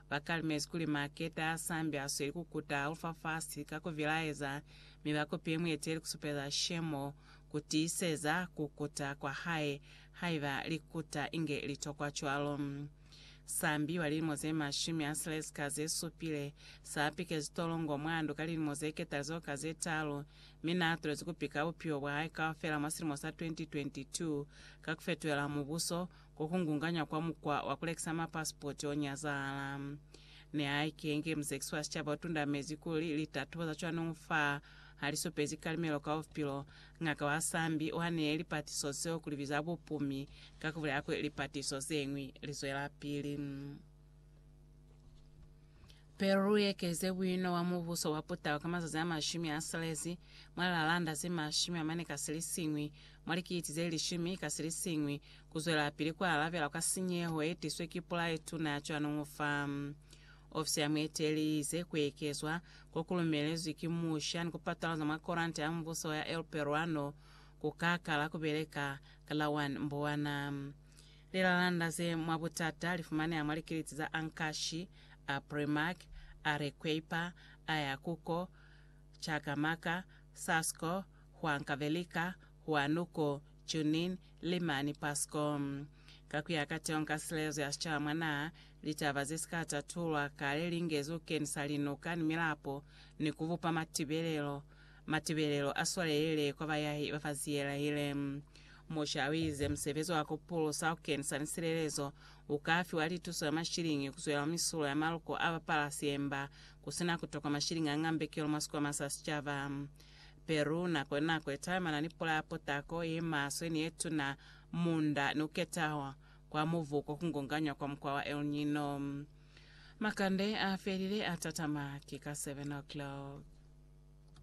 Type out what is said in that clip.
Ba kalimezi kuli Maketa a sambi a sweli ku kuta Alufafasi ka ku vilaeza, mi ba kupile mueteli ku supeza Shemo ku tiiseza ku kuta kwa hae, haiba li kuta inge li tokwa cwalo. Sambi wa lilimo ze mashumi a silezi ka ze supile, sa pikezi tolongo mwa ndu ka lilimo ze ketalizo ka ze talu, mi na tulezi ku pika bupilo bwa hae kaufela mwa silimo sa 2022 ka ku fetuhela Mubuso Ku kungunganya kwa mukwa wa ku lekisa mapasipoti o nyazahala nihaike inge musekisi wa sicaba u tundamezi kuli litatubo za cwanuñu fa ha li supezi kalimelo ka bupilo, Ng'aka wa Sambi u haniye lipatiso zeo ku li biza bupumi ka ku bulela kuli lipatiso ze ñwi li zwelapili. Pe lu ekeze buino bwa Mubuso wa Putau ka mazazi a mashumi a silezi, mwa lilaalanda ze mashumi amane ka silisiñwi, mwa likiti ze lishumi ka silisiñwi, ku zwelapili ku alabela kwa sinyeho ye tiswe ki pula ye tuna cwanoñu fa. Ofisi ya mueteleli i ize ku ekezwa ko ku lumelezwi ki musha ni ku patalaza mwa koranta ya mubuso ya El Peruano ku ka kala ku beleka ka la 1 Mbuwana. Lilalanda ze mwa butata li fumaneha mwa likiliti za Ankashi, a Primark, Arequipa, Ayacuco, Cajamarca, Sasco, Huancavelica, Huanuco, Junin, Lima ni Pasco. Ka ku ya ka Teo ka Silezo ya Sicaba mwa naha, litaba ze si ka tatulwa kale li ngezi ku kenisa linuka ni milapo ni ku bupa matibelelo Matibelelo a swalelile kwa bayahi ba fa Ziyelaele. Musha o ize musebezi wa ku pulusa ku kenisa ni silelezo u ka fiwa lituso ya mashiliñi ku zwela mwa misulo ya maluko a bapalasi emba ku si na ku tokwa mashiliñi a ngambekelo mwa sikwama sa sicaba. Peru nako ni nako i talimana ni pula ya potako, ye maswe ni ye tuna, munda, ni ku ketahwa kwa mubu ko ku ngonganywa kwa mukwa wa El Nino. Makande a felile a tatama ki ka 7 o'clock.